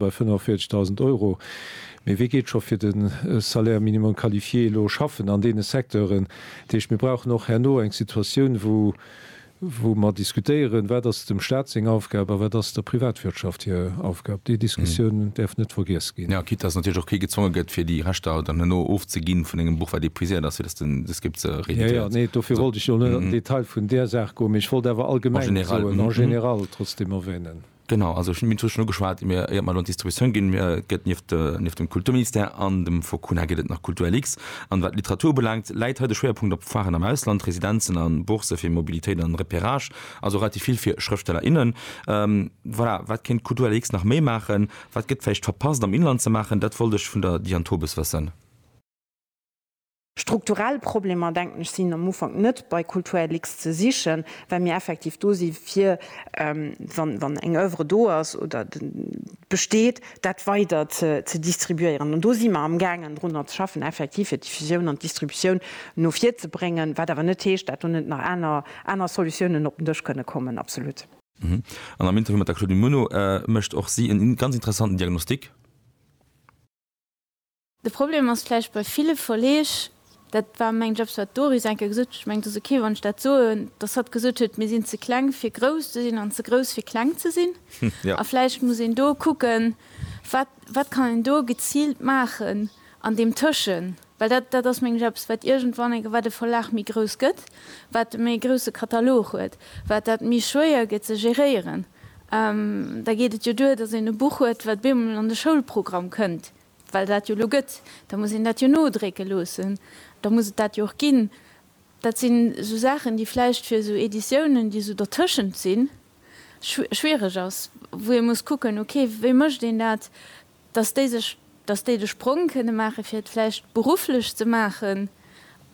bei 45.000 Euro. Mee wee geet scho fir de Salaire minimum qualifié elo schaffen an deene Secteuren? Dat heescht, mir brauchen och herno eng Situatioun, wou mer diskutéieren, wat ass dem Stat seng Aufgab a wat ass der Privatwirtschaft hir Aufgab. Déi Diskussioun däerf net vergiess ginn. Jo, quitte dass natierlech och kee gezwonge gëtt, fir déi Rechter dann herno ofzeginn vun engem Buch, wat épuiséiert ass, fir dass den Descript se rééditéiert. Jo, jo, nee, dofir wollt ech jo net an den Detail vun där Saach goen, mee ech wollt awer allgemeng soen, en général, trotzdeem erwänen. Genau, also ech hunn d'Mine Touche schonn ugeschwat, mir, iert mer elo an d'Distributioun ginn, mir gëtt nieft, nieft dem Kulturministère an dem Focuna gëtt et nach Kulturlux. An wat d'Literatur ubelaangt, läit hei de Schwéierpunkt op Foiren am Ausland, Residenzen an Bourse fir Mobilitéit an Repérage, also relativ vill fir Schrëftsteller, innen. Voilà, wat kéint Kulturlux nach méi maachen? Wat gëtt vläicht verpasst am Inland ze maachen? Dat wollt ech vun der Diane Tobes wëssen. Strukturell Problemer, denken ech, sinn am Ufank net bei Kulturlux ze sichen, well mir effektiv do si fir, wann eng Oeuvre do ass oder besteet, dat weider ze distribuéieren. An do si mer amgaangen drunner ze schaffen, effektiv fir d'Diffusioun an d'Distributioun no vir ze bréngen, wat awer net heescht, dat do net nach aner Solutiounen op den Dësch kënne kommen. Absolut. An am Interview mat der Claudine Muno mécht och si e ganz interessanten Diagnostic. De Problem ass vläicht bei ville Verleeg, dat war meng Jobs, wat d'Doris eng Kéier gesot huet, ech mengen, et ass okay, wann ech dat soen, dass hatt gesot huet, mir sinn ze kleng, fir grouss ze sinn, an ze grouss, fir kleng ze sinn. A vläicht muss een do kucken, wat, wat kann een do geziilt maachen an deem Tëschen. Well dat, dat ass meng Jobs, wat iergendwann eng, wat e Verlag méi grouss gëtt, wat e méi grousse Katalog huet, wat dat méi schwéier gëtt ze geréieren. Da geet et jo duer, dass een e Buch huet, wat bemol an de Schoulprogramm kënnt, Well dat jo elo gëtt, da muss een dat jo nodrécke loossen, da muss et dat jo och ginn. Dat sinn esou Saachen, déi vläicht fir esou Editiounen, déi esou dertëschent sinn, schwiereg ass, wou ee muss kucken, ok, wéi mécht een dat, dass déi sech, dass déi de Sprong kënne maachen, fir et vläicht berufflech ze maachen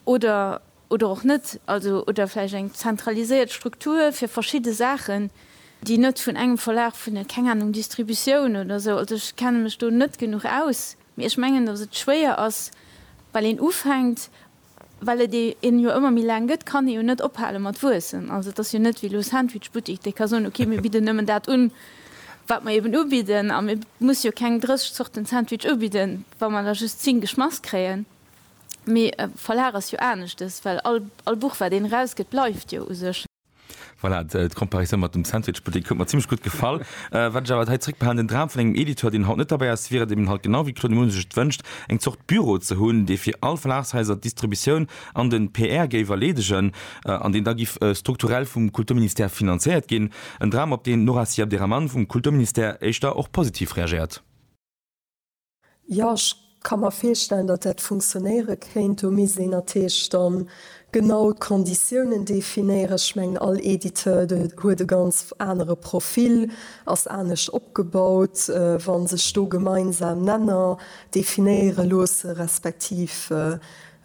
oder. oder och net, also oder vläicht eng zentraliséiert Struktur fir verschidde Saachen, déi net vun engem Verlag, vun der, keng Ahnung, Distributioun oder esou, also ech kenne mech do net genuch aus, mee ech mengen, datt et schwéier ass, well een ufänkt, well et een jo ëmmer méi laang gëtt, kann ee jo net ophale mat wuessen. Also et ass jo net wéi elo Sandwichbuttik, dee ka soen, okay, mir bidden nëmmen dat un, wat mer eben ubidden, a mir musse jo keng 30 Zorten Sandwich ubidden, wa mer der just 10 geschmass kréien. Mee e Verlag ass jo aneschtes, well all Buch, wat een erausgëtt, bleift jo u sech. Voilà, d'Comparatioun mat dem Sandwichbuttek huet mer zimmlech gutt gefall. Wat ech awer hei zeréckbehalen, den Dram vun engem Editeur, deen haut net derbäi ass, wier et eben halt genau wéi d'Claude Moon sech et wënscht, eng Zort Büro ze hunn, dee fir all Verlagshaiser d'Distributioun an den PR géif erleedegen an deen da giff strukturell vum Kulturministère finanzéiert ginn. En Dram, op deen d'Nora Siabderahman vum Kulturministère éischter och positiv reagéiert. Jo, ech ka mer virstellen, datt dat funktionéiere kéint. Do misst een natierlech da genau d'Konditiounen definéieren. Ech mengen, all Editeur huet e ganz anere Profil, ass anescht opgebaut. Wa sech do gemeinsam Nenner definéiere loosse respektiv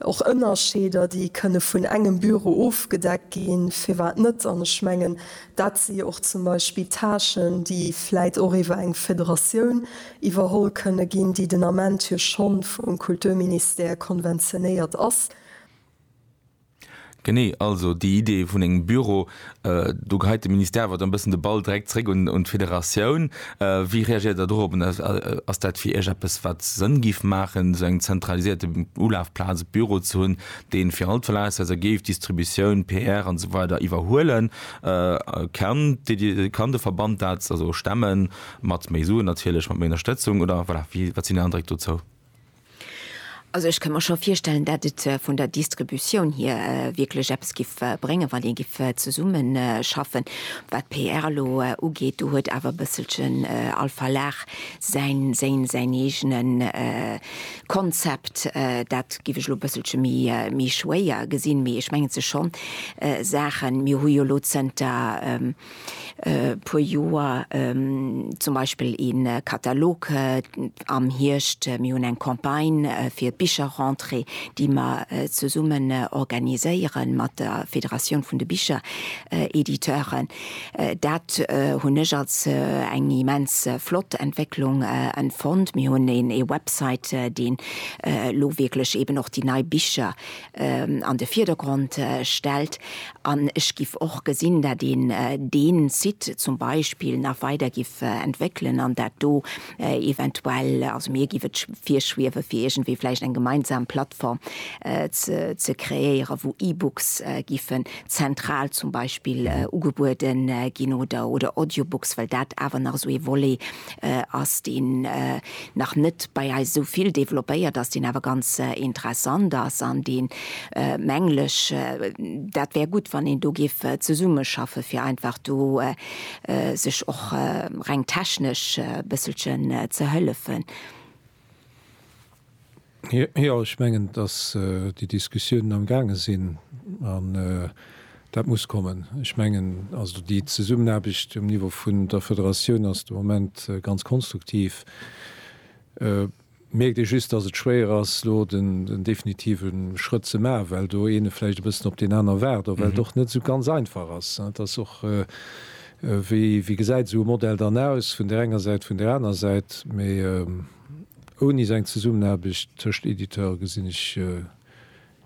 Och Ënnerscheeder, déi kënne vun engem Büro ofgedeckt ginn, firwat net? An ech mengen, dat si jo och zum Beispill Tâchen, déi vläit och iwwer eng Federatioun iwwerholl kënne ginn, déi den Ament jo schonn vum Kulturministère konventionéiert ass. Genee, also déi Idee vun engem Büro, do geheit de Ministère awer dann e bëssen de Ball direkt zréck un d'Federatioun. Wéi reagéiert Der dorop? Ass dat fir Iech eppes, wat Sënn géif maachen, esou eng zentralisierte Ulafplaz, e Büro ze hunn, dee fir all d'Verlagshaiser géif Distributioun, PR an esou weider iwwerhuelen? Kann de Verband dat stemmen, mat méi Suen natierlech, mat méi Ënnerstëtzung oder, voilà, wat sinn Är Andréck dozou? Also ech kënn mer scho virstellen, dat et vun der Distributioun hier wierklech eppes giff bréngen, wann ee giff zesummen schaffen. Wat d'PR elo ugeet, do huet awer e bësselchen all Verlag säin, séin, säin eegene Konzept. Dat giff ech elo e bësselche méi, méi schwéier gesinn. Mee ech mengen, et si scho Saachen, mir hu jo elo zënter, puer Joer zum Beispill ee Katalog am Hierscht, mir hunn eng Campagne fir d'Bicherrentrée, déi mer zesummen organiséiere mat der Federatioun vun de Bicherediteuren. Dat hunn ech als eng immens flott Entwécklung empfonnt. Mir hunn ee Website, deen elo wierklech eeben och déi nei Bicher an de Vierdergrond stellt. An ech giff och gesinn, dat een deen Site zum Beispill nach weider giff entwéckelen an dat do eventuell, also mir giff et virschwiewen, fir iergendwéi vläicht eng gemeinsam Plattform ze kreéieren, wou E-Books giffen zentral zum Beispill ugebueden ginn oder Audiobooks, well dat awer nach esou ee Volet ass deen nach net bei eis esou vill développéiert ass, deen awer ganz interessant ass an dee mengl ech, dat wär gutt, wann een do géif zesummeschaffe fir einfach do sech och reng technesch e bësselchen ze hëllefen. Jo, ech mengen, dass déi Diskussiounen am gaange sinn an dat muss kommen. Ech mengen also, déi Zesummenaarbecht um Niveau vun der Federatioun ass de Moment ganz konstruktiv. Mierkt ee just, dass et schwéier ass elo den definitive Schrëtt ze maachen, well do ee vläicht e bëssen op deen aner waart, well et och net esou ganz einfach ass. Et ass och. Wéi gesäit esou e Modell dann aus, vun där enger Säit, vun där aner Säit? Mee ouni esou eng Zesummenaarbecht tëscht Editeure gesinn ech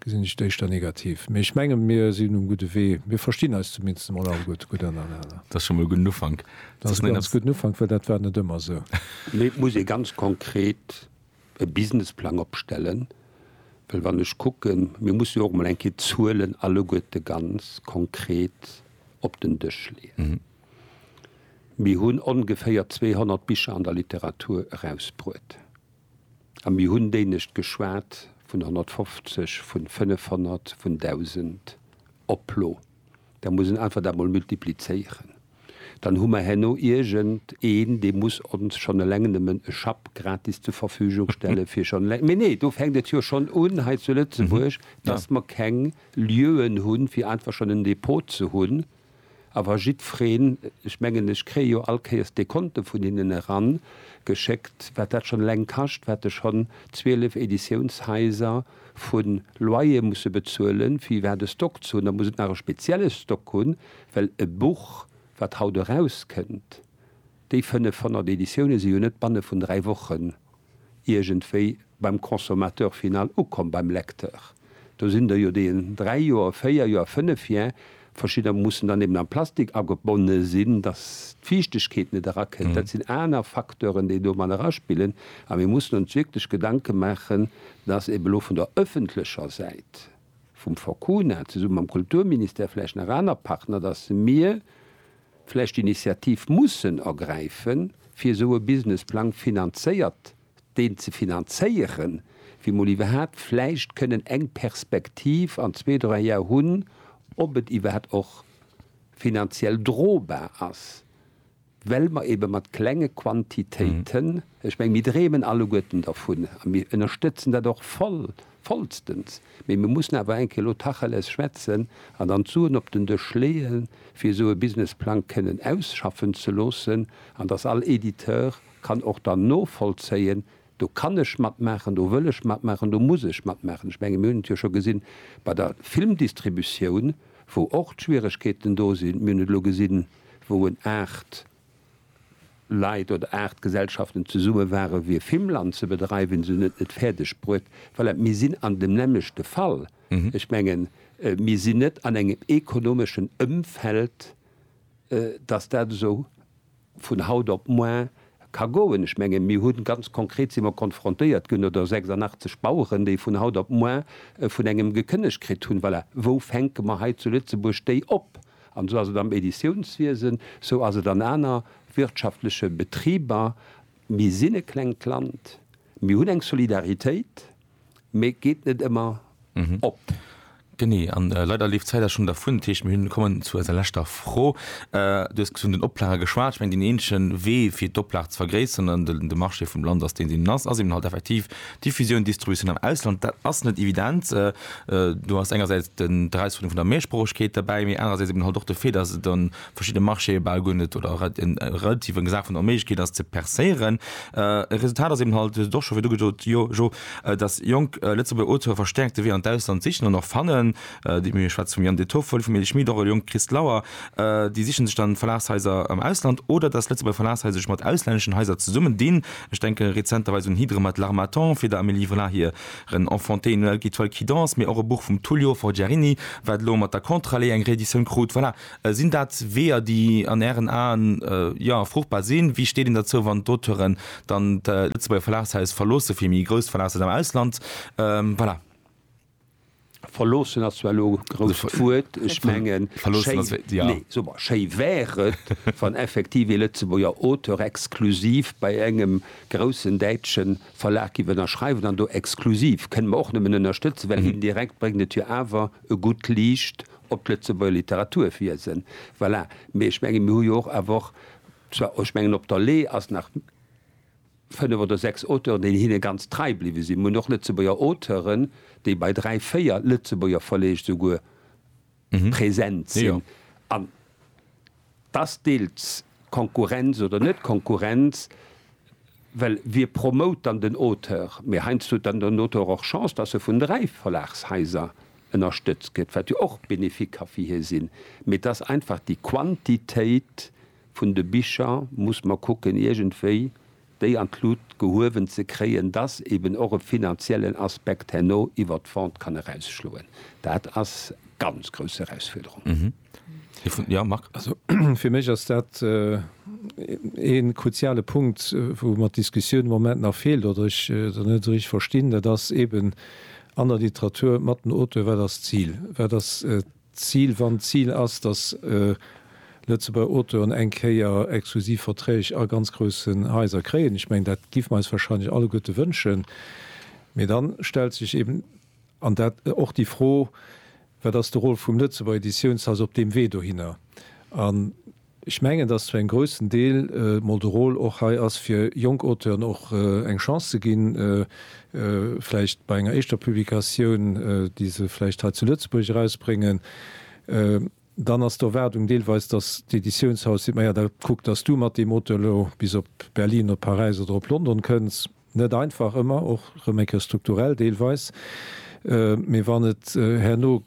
et éischter negativ. Mee ech menge mir sinn um gudde Wee. Mir verstinn eis zumindest emol alleguer gutt ënnerenner. Dat ass scho mol e gudden Ufank. Dat ass e ganz gudden Ufank, well dat war net ëmmer esou. Mee et muss ee ganz konkret e Businessplang opstellen, well wann ech kucken, mir mussen jo och emol eng Kéier d'Zuelen alleguerte ganz konkret op den Dësch leeën. Mir hunn ongeféier 200 Bicher an der Literatur erausbruet a mir hunn dénegt geschwat vun 150, vun 500, vun 1.000 Oplo. Da muss een einfach dat mol multiplizéieren. dann hu mer herno iergend een, dee muss ons schonn eleng nëmmen e Schapp gratis zur Verfügung stelle fir schonn eleng, mee nee, do fänkt et jo schonn un hei zu Lëtzebuerg, dass mer keng Lieuen hunn, fir einfach schonn en Depot ze hunn. A wa jiddwereen, ech mengen, ech kréie jo all Kéiers Dekonte vun hinnen eran geschéckt, wat dat schonn eleng kascht, wat de schonn 12 Editiounshaiser vu Loyer musse bezuelen, fir iwwerhaapt e Stock ze hunn, da muss et nach e spezielle Stock hunn, Well e Buch, wat haut erauskënnt, déi 500 Editioune si jo net banne vun dräi Wochen iergendwéi beim Consommateur final ukomm, beim Lecteur. Do sinn der jo, déi en dräi Joer, véier Joer, fënnef Joer, verschidder mussen dann eben am Plastik agebonne sinn, datt d'Fiichtegkeet net erakënnt. Dat sinn aner Facteuren, déi do mat eraspillen. A mir mussen ons wierklech Gedanke maachen, datt eben elo vun der ëffentlecher Säit, vum Forcuna, zesumme mam Kulturministère, vläicht nach aner Partner, datt mir vläicht d'Initiativ mussen ergräife fir esou e Businessplang finanzéiert, deen ze finanzéieren, fir mol iwwerhaapt vläicht kënnen eng Perspektiv an zwee, dräi Jar hunn, ob et iwwerhaapt och finanziell drobar ass. well mer eebe mat klenge Quantitéiten, ech menge mir dreemen alleguerten dervun a mir ënnerstëtzen dat och voll, vollstens, mee mir mussen awer eng Kéier elo Tacheles schwätzen an dann d'Suen op den Dësch leeë fir esou e Businessplang kënnen ausschaffen ze loossen an dass all Editeur kann och dann novollzéien, Do kann ech matmaachen, do wëll ech matmaachen, do muss ech matmaachen. Ech menge mir hunn et jo scho gesinn bei der Filmdistributioun, wou och d'Schwieregkeeten do sinn. Mir hunn et elo gesinn, wou en aacht Leit oder aacht Gesellschaften zesumme ware fir Filmland ze bedreiwen, se hunn et net fäerdeg bruet. Voilà, mir sinn an dem nämmlechte Fall. Ech menge mir sinn net an engem ekonomeschen Ëmfeld, datt dat esou. vun haut op moar ka goen. Ech mengen, mir hunn, ganz konkret si mer konfrontéiert ginn, oder 86 Baueren, déi vun haut op moar vun engem gekënnegt kritt hunn. Voilà, wou fänke mer hei zu Lëtzebuerg déi op? An esou ass et am Editiounswiesen, esou ass et an aner wirtschaftleche Betriber. Mir sinn e klengt Land, mir hunn eng Solidaritéit. mee geet net ëmmer op. Genee, an leider leeft d'Zäit awer schonn dervun. Dat heescht, mir hunn, kommen zu eiser leschter Fro. Du hues vun den Oplagen geschwat. Ech mengen, deen eenzegen Wee fir d'Oplag ze vergréisseren an de Marché vum Land ass deen, deen en ass, ass eben halt effektiv d'Diffusioun, d'Distributioun am Ausland. Dat ass net evident. Do ass engersäits d'Erausfuerderung vun der Mehrsproochegkeet derbäi, mee anerersäits eben halt och de Fait, dass et an verschidde Marchéë bal guer net oder relativ eng Saach vun der Onméiglechkeet ass ze percéieren. E Resultat ass eben halt do scho wéi du gesot jo jo, datt jonk Lëtzebuerger Auteure verstäerkt de Wee an d'Ausland sichen an och fannen. Déi mir schwätze vum Yann De Toffel, vum Elie Schmit, och e jonke Christ Lauer. Déi siche sech dann Verlagshaiser am Ausland oder datt Lëtzebuerger Verlagshaiser sech mat auslänneschen Haiser zesummen dinn. Ech denke rezenterweis un Hydre mat L'Harmattan fir der Amélie Vla hiren Enfanté, Noël qui toile qui danse, mee och e Buch vum Tullio Forgiarini, wat elo mat der Contrallée eng Reeditioun krut. Voilà, Sinn dat Weeër, déi an Ären Aen, jo, fruchtbar sinn? Wéi steet een derzou, wann d'Auteuren dann d'Lëtzebuerger Verlagshais verloossen, fir méi grousst Verlagshaiser am Ausland, voilà. Verloossen ass zwar elo e grousst Wuert. Ech mengen, schéi wär et, wann effektiv ee Lëtzebuerger Auteur exklusiv bei engem groussen däitsche Verlag giff ënnerschreiwen. An do exklusiv kënne mer och nëmmen ënnerstëtzen, well indirekt bréngt et jo awer e gutt Liicht Op d'Lëtzebuerger Literatur wiesen. Voilà. Mee ech mengen, mir hu jo och awer och, zwar, ech mengen, op der Lee ass nach fënnef oder sechs Auteuren, déi hinne ganz trei bliwwe sinn. Mir hunn och Lëtzebuerger Auteuren, déi bei dräi, véier Lëtzebuerger Verleeg souguer present sinn. An. Ass deels Konkurrenz oder net Konkurrenz, well wie promote dann den Auteur? Mee heiansdo huet dann den Auteur och Chance, dass e vun dräi Verlagshaiser ënnerstëtzt gëtt, wat jo och bénéfique ka fir hie sinn. Mee et ass einfach déi Quantitéit vun de Bicher, muss mer kucken iergendwéi déi an d'Lut gehuewen ze kréien, dass eben och e finanziellen Aspekt herno iwwert d'Vente kann erausschloen. Dat ass ganz grouss Erausfuerderung. Jo, Marc. Also, fir mech ass dat ee kruziale Punkt, wou mer d'Diskussioun am Moment nach feelt oder ech se net esou richteg verstinn. Dat ass eben an der Literatur mat den Auteuren, Wat ass d'Zil? Wat ass. D'Zil, wann d'Zil ass, dass Lëtzebuerger Auteuren eng Kéier exklusiv Verträg a ganz groussen Haiser kréien, ech mengen, dat géife mer eis wahrscheinlech alleguerte wënschen, mee da stellt sech eben an dat och déi Fro, Wat ass de Rôle vum Lëtzebuerger Editiounshaus op deem Wee dohinner? Ech mengen, dass zu engem groussen Deel mol de Rôle och hei ass, fir jonk Auteuren och eng Chance ze ginn, vläicht bei enger éischter Publikatioun, déi se vläicht hei zu Lëtzebuerg erausbréngen. Dann ass d'Erwaardung deelweis, dass d'Editiounshaus seet, Maja, da kuck, dass du mat deem Auteur elo bis op Berlin, op Paräis oder op London kënns. Net einfach ëmmer, och rëm eng Kéier strukturell deelweis, mee wann et herno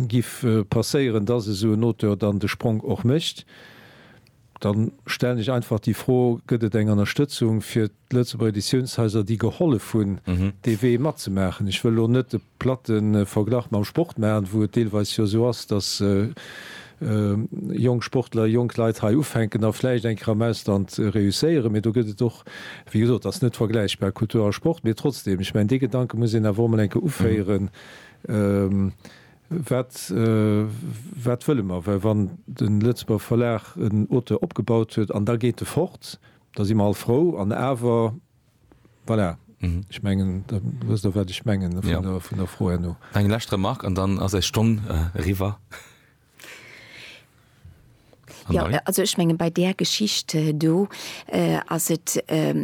giff passéieren, dass esou en Auteur dann de Spronk och mécht, da stellen ech einfach déi Fro, gëtt et eng Ënnerstëtzung fir d'Lëtzebuerger Editiounshaiser, déi gehollef hunn, dee Wee matzemaachen? Ech wëll elo net de. Platten Verglach mam Sport maachen, wou et deelweis jo esou ass, dass jonk Sportler, jonk Leit hei ufänken a vläicht eng Kéier am Ausland reusséieren. Mee do gëtt et och, wéi gesot, ass net vergläichbar Kultur a Sport. Mee trotzdeem, ech mengen, dee Gedanke muss een awer och emol eng Kéier uféieren, Wat, wat wëlle mer? Well wann de Lëtzebuerger Verlag en Auteur opgebaut huet an da geet e fort, da si mer all frou an awer, Voilà. Mhm. Ech mengen, da wësst Der, wat ech mengen vun der, ja, vun der Fro herno. Eng lescht Remark an dann ass eis Stonn eriwwer. Jo, also ech menge bei där Geschicht do ass et,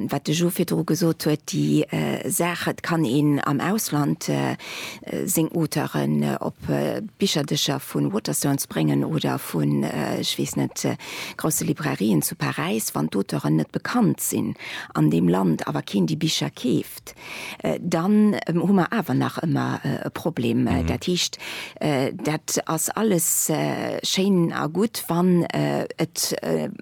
wat de Jo virdru gesot huet, déi Saach, et kann een am Ausland seng Auteuren op d'Bicherdëscher vu Waterstones bréngen oder vun, ech weess net, grousse Librairien zu Paräis, wann d'Auteuren net bekannt sinn, an deem Land awer keen déi Bicher keeft, dann hu mer awer nach ëmmer e Problem. Dat heescht, dat ass alles schéin a gutt, wann et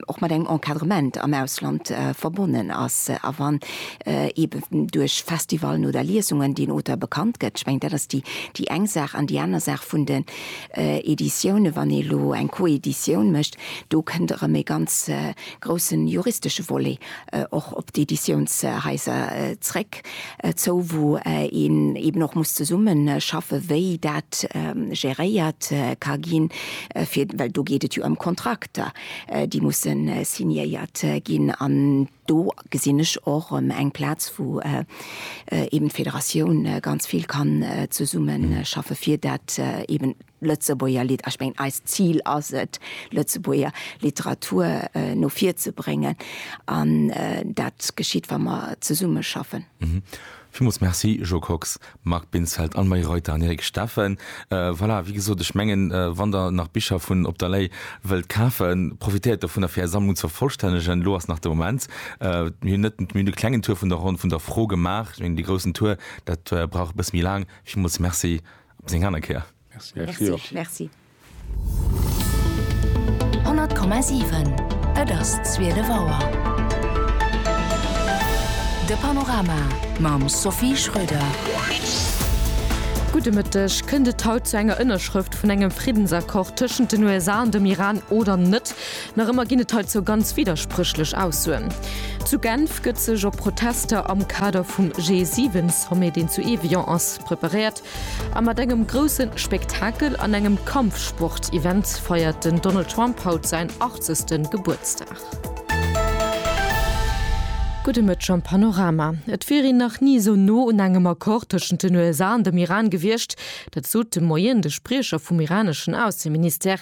och mat engem Encadrement am Ausland verbonnen ass a wann eeben duerch Festivalen oder Liesungen deen Auteur bekannt gëtt. Ech mengen, dat ass déi eng Saach. An déi aner Saach vun den Editiounen, wann ee elo eng Coeditioun mécht, do kënnt erëm ee ganz, groussen juristesche Volet och op d'Editiounshaiser zréck zou, wou een eben och muss zesumme schaffen, wéi dat géréiert ka ginn, fir well do geet et jo ëm Kontrakter, déi musse signéiert ginn. An do gesinn ech och erëm eng Plaz, wou eben d'Federatioun ganz vill kann zesumme schaffen, fir dat eben. Lëtzebuerger Lit. Ech mengen, eist Zil ass et, Lëtzebuerger Literatur no vir ze bréngen. An dat geschitt, wa mer zesumme schaffen. Villmools Merci, Jo Kox, Marc Binsfeld, Anne-Marie Reuter an Eric Steffen. Voilà, wéi gesot, ech mengen, wann Der nach Bicher vun Op der Lay wëllt kafen, profitéiert dovunner, fir Är Sammlung ze vervollstännegen. Elo ass nach de Moment. Mir hunn net, mir hunn e klengen Tour vun der Ronn vun der Fro gemaach. Ech mengen, dee groussen Tour, dat brauch e bësse méi laang. Villmools Merci. Op seng aner Kéier. Merci och. Merci. 100,7 Et ass 12 Auer. De Panorama mam Sophie Schröder. Gudde Mëtteg. Kënnt et haut zu enger Ënnerschrëft vun engem Friddensaccord tëschent den USA an dem Iran oder net? Nach ëmmer ginn et heizou ganz widderspréchlech Aussoen. Zu Genf gëtt sech op Protester am Kader vum G7-Sommet, deen zu Evian ass, preparéiert. A mat engem grousse Spektakel an engem Kampfsport-Event feiert den Donald Trump haut säin 80. Gebuertsdag. Gudde Mëtteg am Panorama. Et wier een nach ni esou no un engem Accord tëschent den USA an dem Iran gewiescht. Dat sot de Moien de Spriecher vum iraneschen Ausseministère,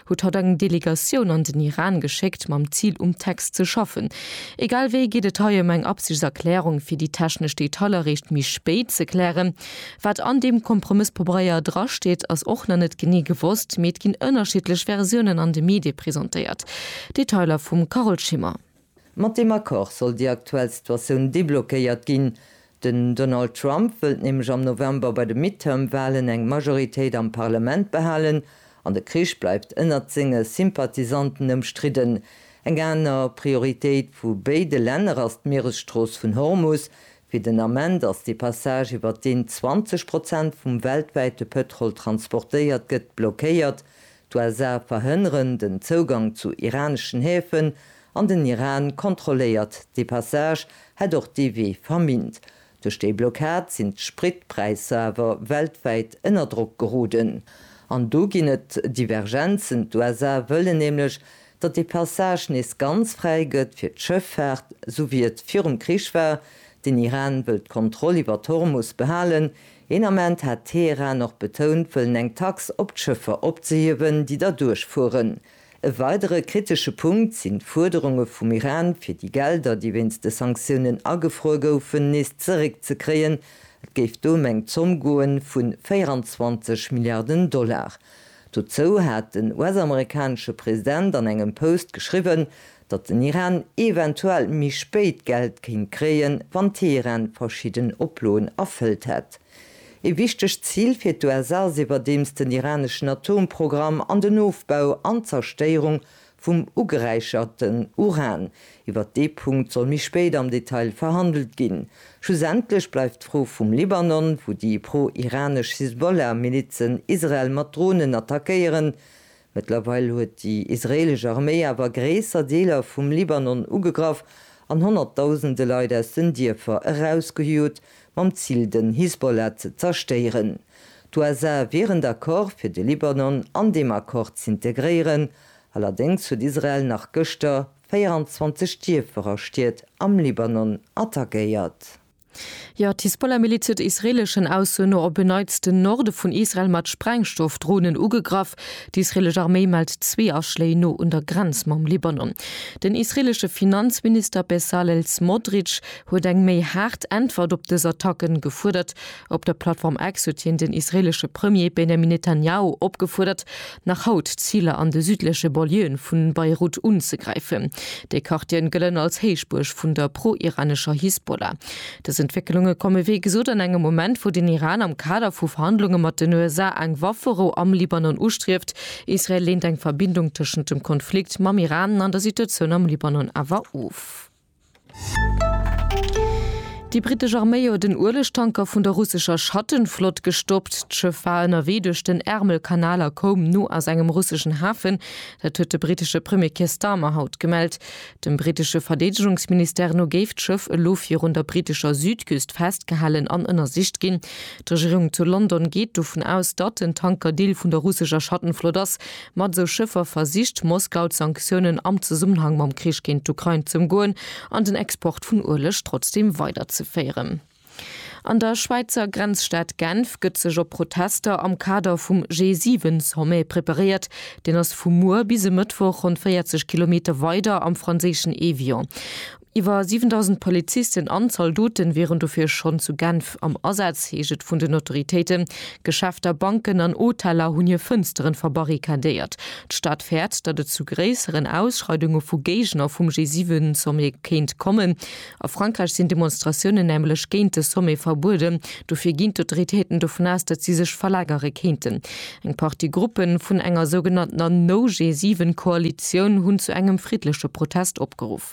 huet haut eng Delegatioun an den Iran geschéckt mam Zil um Text ze schaffen. Egal wéi geet et hei ëm eng Absichtserklärung fir déi technesch Detailer eréischt méi spéit ze klären. Wat an deem Kompromësspobraier drasteet ass och nach net genee gewosst, mee et ginn ënnerschiddlech Versiounen an de Medie presentéiert. Detailer vum Carole Schimmer. Mat deem Accord soll déi aktuell Situatioun deblockéiert ginn. Den Donald Trump wëllt nämlech am November bei de Midterm-Walen eng Majoritéit am Parlament behalen an de Krich bleift ënnert senge Sympathisanten ëmstridden. Eng aner Prioritéit vu béide Länner ass d'Mieresstrooss vun Hormus. Fir den Ament ass dee Passage, iwwer deen 20 Prozent vum weltwäite Pëtrol transportéiert gëtt, blockéiert. D'USA verhënneren den Zougang zu iraneschen Häfen an den Iran kontrolléiert dee Passage, hätt och dee Wee verminnt. Duerch déi Blockad sinn d'Spritpräisser awer weltwäit ënner Drock geroden. An do ginn et Divergenzen, d'USA wëllen nämlech, datt dee Passage nees ganz fräi gëtt fir d'Schëffaart, esou wéi et virum Krich war, den Iran wëll d'Kontroll iwwer d'Hormus behalen, Een Ament hat Teheran och betount wëllen eng Tax op d'Schëffer opzehiewen, déi da duerchfueren. E weidere kritesche Punkt sinn d'Fuerderunge vum Iran, fir déi Gelder, déi wéinst de Sanktiounen agefruer goufen, nees zeréckzekréien. Et géif do ëm eng Zomm goe vu 24 Milliarden Dollar. Dozou hat den US-amerikanesche President an engem Post geschriwwen, datt den Iran eventuell méi spéit Geld kéint kréien, wann Teheran verschidden Oploen erfëllt hätt. Ee wichtegt Zil fir d'USA ass iwwerdeems den iraneschen Atomprogramm an den Ofbau an d'Zerstéierung vum ugeräicherten Uran. Iwwert dee Punkt soll méi spéit am Detail verhandelt ginn. Schlussendlech bleift d'Fro vum Libanon, wou déi pro-iranesch Hisbollah-Milizen Israel mat Dronen attackéieren, Mëttlerweil huet déi israeelesch Arméi awer gréisser Deeler vum Libanon ugegraff an honnertdausende Leit aus den Dierfer erausgejot, mam Zil den Hisbollah ze zerstéieren. D'USA wieren d'Accorde fir de Libanon an deem Accord z'integréieren, allerdéngs huet Israel nach gëschter 24 Dierfer a Stied am Libanon attackéiert. Jo, d'Hisbollah-Miliz huet israeeleschen Aussoen no op en Neits den Norde vun Israel mat Sprengstoffdronen ugegraff. D'israeelesch Arméi mellt zwee Aschléi no un der Grenz mam Libanon. Den israeelesche Finanzminister Bezalel Smotrich huet eng méi haart Äntwert op dës Attacken gefuerdert. Op der Plattform X huet hien den israeelesche Premier Benjamin Netanjahu opgefuerdert, nach haut Ziler an de südleche Banlieuen vu Beirut unzegräifen. Déi Quartieren gëllen als Héichbuerg vun der pro-iranescher Hisbollah. Dës Entwécklunge komme wéi gesot an engem Moment, wou den Iran am Kader vu Verhandlunge mat den USA eng Wafferou am Libanon ustrieft. Israel leent eng Verbindung tëschent dem Konflikt mam Iran an der Situatioun am Libanon awer of. Déi brittesch Arméi huet en Uelegtanker vun der russescher Schattenflott gestoppt. D'Schëff war ënnerwee duerch den Ärmelkanal a koum no aus engem russeschen Hafen. Dat huet de brittesche Premier Keir Starmer haut gemellt. Dem brittesche Verdeedegungsministère no géif d'Schëff elo virun der brittescher Südküst festgehalen an ënnersicht ginn. D'Regierung zu London geet dovun aus, datt den Tanker Deel vun der russescher Schattenflott ass, Mat esou Schëffer versicht Moskau d'Sanktiounen am Zesummenhang mam Krich géint d'Ukrain z'ëmgoen an den Export vun Ueleg trotzdeem weiderzeféieren. An der Schwäizer Grenzstad Genf gëtt sech op Protester am Kader vum G7-Sommet preparéiert. Deen ass vu muer bis e Mëttwoch ronn 40 Kilometer weider am franséischen Évian. Iwwer 7.000 Polizisten an Zaldoten wieren dofir schonn zu Genf am Asaz, heescht et vun den Autoritéiten. Geschäfter, Banken an Hoteller hunn hir Fënsteren verbarrikadéiert. D'Stad fäert, datt et zu gréisseren Ausschreidunge vu Géigner vum G7-Sommet kéint kommen. A Frankräich sinn Demonstratiounen nämlech géint de Sommet verbueden. Dofir ginn d'Autoritéiten dovun aus, datt si sech verlagere kéinten. Eng Partie Gruppe vun enger sougenanntener No-G7-Koalitioun hunn zu engem friddleche Protest opgeruff.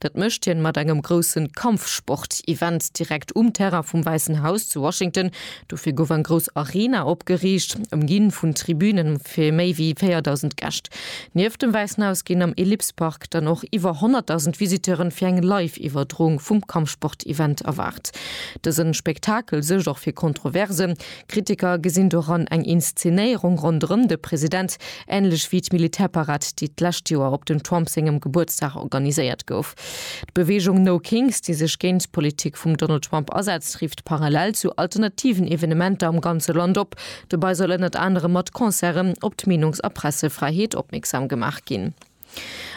Dat mécht hien mat engem groussen Kampfsport-Event direkt um Terrain vum Wäissen Haus zu Washington. Dofir gouf eng grouss Arena opgeriicht, ëmginn vun Tribünen fir méi wéi 4.000 Gäscht. Nieft dem Wäissen Haus ginn am Ellipse Park dann och iwwer 100.000 Visiteuren fir eng Live-Iwwerdroung vum Kampfsport-Event erwaart. Dësen Spektakel suergt och fir Kontroversen. Kritiker gesinn doran eng Inszenéierung ronderëm de President, änlech wéi d'Militärparad, déi d'lescht Joer op dem Trump sengem Gebuertsdag organiséiert gouf. D'Beweegung No Kings, déi sech géint d'Politik vum Donald Trump asetzt, rifft parallel zu alternativen Evenementer am ganze Land op. Dobei soll ënnert anerem mat Concerte op d'Meenungs a Pressefräiheet opmierksam gemaach ginn.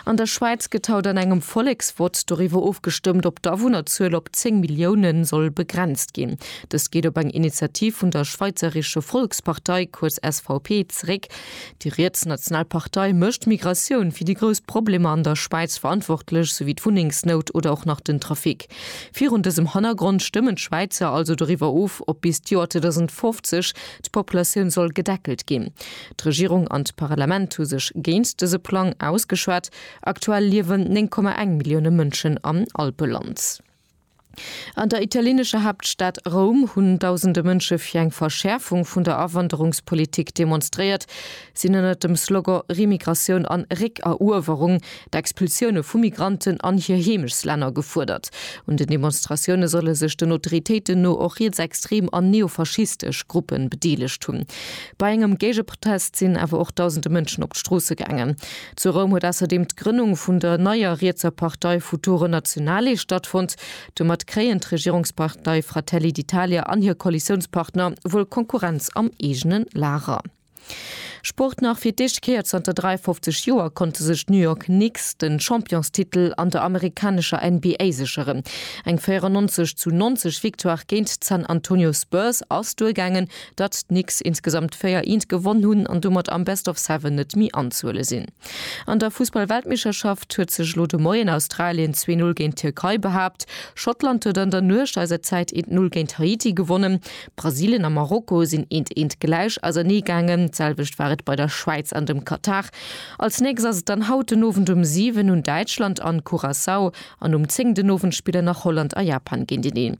An der Schwäiz gëtt haut an engem Volleksvott doriwwer ofgestëmmt, ob d'Awunnerzuel op 10 Millioune soll begrenzt ginn. Dëst geet op eng Initiativ vun der Schweizerische Volkspartei, kuerz SVP, zeréck. Déi rietsnational Partei mécht d'Migratioun fir déi grouss Problemer an der Schwäiz verantwortlech, souwéi d'Wunnengsnout oder och nach den Trafic. Virun dësem Hannergrond stëmmen d'Schwäizer also doriwwer of, ob bis d'Joer 2050 d'Populatioun soll gedeckelt ginn. D'Regierung an d'Parlament hu sech géint dëse Plang ausgeschwat. Aktuell liewen 9,1 Millioune Mënschen am Alpeland. An der italienescher Haaptstad Roum hunn dausende Mënsche fir eng Verschäerfung vun der Awanderungspolitik demonstréiert. Si hunn ënnert dem Slogan Remigratioun an Réckeruewerung d'Expulsioune vu Migranten an hir Heemechslänner gefuerdert. Un den Demonstratioune solle sech den Autoritéiten no och rietsextrem an neofaschistesch Gruppen bedeelegt hunn. Bei engem Géigeprotest sinn awer och dausende Mënschen op d'Stroosse gaangen. Zu Roum huet ausserdeem d'Grënnung vun der neier rietser Partei Futuro Nazionale stattfonnt. Domat kréien d'Regierungspartei Fratelli d'Italia an hir Koalitiounspartner wuel Konkurrenz am eegene Lager. Sport Nach fir d'éischte Kéier zanter 53 Joer konnte sech d'New York Knicks de Championstitel an der amerikanescher NBA sécheren. Eng 94 zu 90 Victoire géint d'San Antonio Spurs ass duergaangen, datt d'Knicks insgesamt 4 Eent gewonn hunn an domat am Best of Seven net méi anzuhuele sinn. An der Fussball-Weltmeeschterschaft huet sech elo de Moien Australien 2-0 géint d'Tierkei behaapt. Schottland huet an der Nuecht eiser Zäit 1-0 géint Haiti gewonnen. Brasilien a Marokko sinn eent eent gläich ausernee gaangen, d'selwecht war et bei der Schwäiz an dem Katar. Als nächst ass et dann haut den Owend um 7 un Däitschland an Curaçao an um 10 den Owend spillen nach Holland a Japan géinteneen.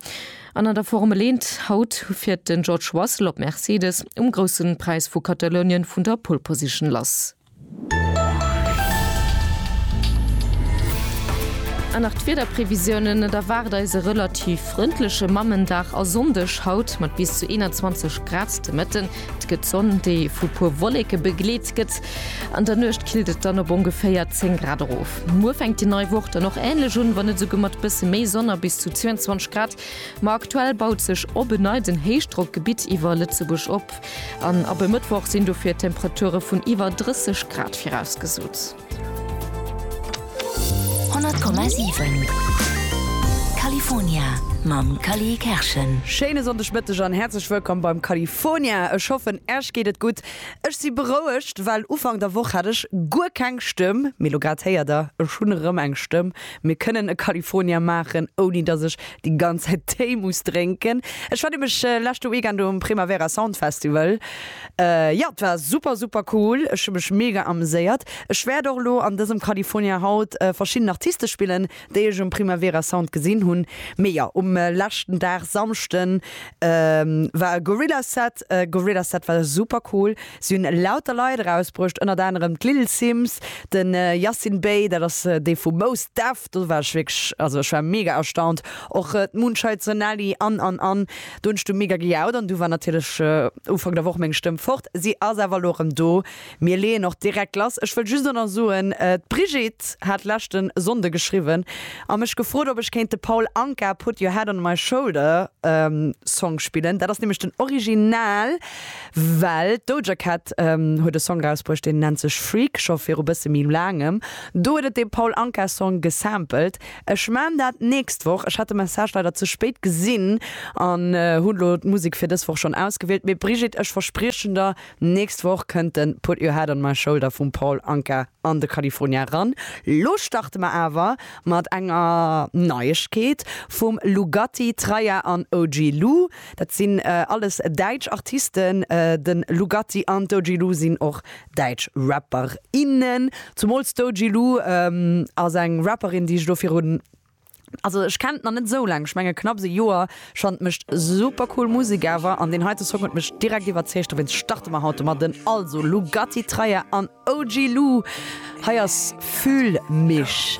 An an der Formel eent, haut fiert den George Russell op Mercedes um groussen Präis vu Katalounien vun der Pole Position lass. An nach d'Wiederprevisiounen, Et erwaart eis e relativ frëndleche Mammendag a Sonndeg haut mat bis zu 21 Grad de Mëtten. Et gëtt Sonn, déi vu puer Wolleke begleet gëtt. An der Nuecht killt et dann op ongeféier 10 Grad erof. Muer fänkt déi nei Woch dann och änlech un, wann net esouguer mat bësse méi Sonn a bis zu 22 Grad. Ma aktuell baut sech op en Nei den Héichdrockgebitt iwwer Lëtzebuerg op. An ab e Mëttwoch sinn dofir Temperature vun iwwer 30 Grad virausgesot. 100,7 California mam Cally Kerschen. Schéine Sonndegmëtteg an häerzlech wëllkomm beim California. Ech hoffen Äech geet et gutt. Ech si berouegt, well Ufank der Woch hat ech guer keng Stëmm, mee lo grad héiert der, ech hunn erëm eng Stëmm. Mir kënnen e California maachen, ouni dass ech déi ganz Zäit Téi muss drénken. Ech war nämlech leschte Weekend um Primavera Sound Festival. Jo, et war super, super cool. Ech hu mech mega ameséiert. Ech wäert och elo an dësem California haut verschidden Artiste spillen, déi ech um Primavera Sound gesinn hunn. Mee jo, um leschten Dag, Samschden, war e Gorillaz Set. Gorillaz Set war super cool. Si hunn lauter Leit erausbruecht, ënnert anerem d'Lil Simz, de Yasin Bey, dat ass dee vu Mos Def, do war ech wierklech, also ech war mega erstaunt, och d'Moonshite, d'Sonali an, an, an. Do hunn ech du mega gejaut an du war natierlech Ufank der Woch meng Stëmm fort. Si ass awer elo erëm do. Mir leeën och direkt lass. Ech wëll just och nach soen, d'Brigitte hat leschte Sonnde geschriwwen a mech gefrot, ob ech kéint de Paul Anka Put Your Head on My Shoulder Song spillen. Dat ass nämlech den Original. Well d'Doja Cat huet e Song rausbruecht, deen nennt sech Freak, scho viru bësse méi laangem. Do huet et dee Paul Anka Song gesampelt. Ech man dat nächst Woch. Ech hat de Message leider ze spéit gesinn an hunn elo d'Musek fir dës Woch schonn ausgewielt. Mee Brigitte, ech verspriechen der, nächst Woch kënnt de Put Your Head on My Shoulder vum Paul Anka an de California ran. Lo starte mer awer mat enger Neiegkeet vum Lugatti, Traya an OG Lou. Dat sinn alles däitsch Artisten. De Lugatti an d'Doji Lou sinn och däitsch Rapperinnen. Zumools d'Doji Lou ass eng Rapperin, déi ech elo virun, also ech kennen d'nach net esou laang, ech menge knapps e Joer. Ech fannen, et mécht super cool Musek awer an deen heite Song huet mech direkt iwwerzeegt. Dowéinst starte mer haut domadden. Also Lugatti, Traya an OG Lou, hei ass Fühl mich.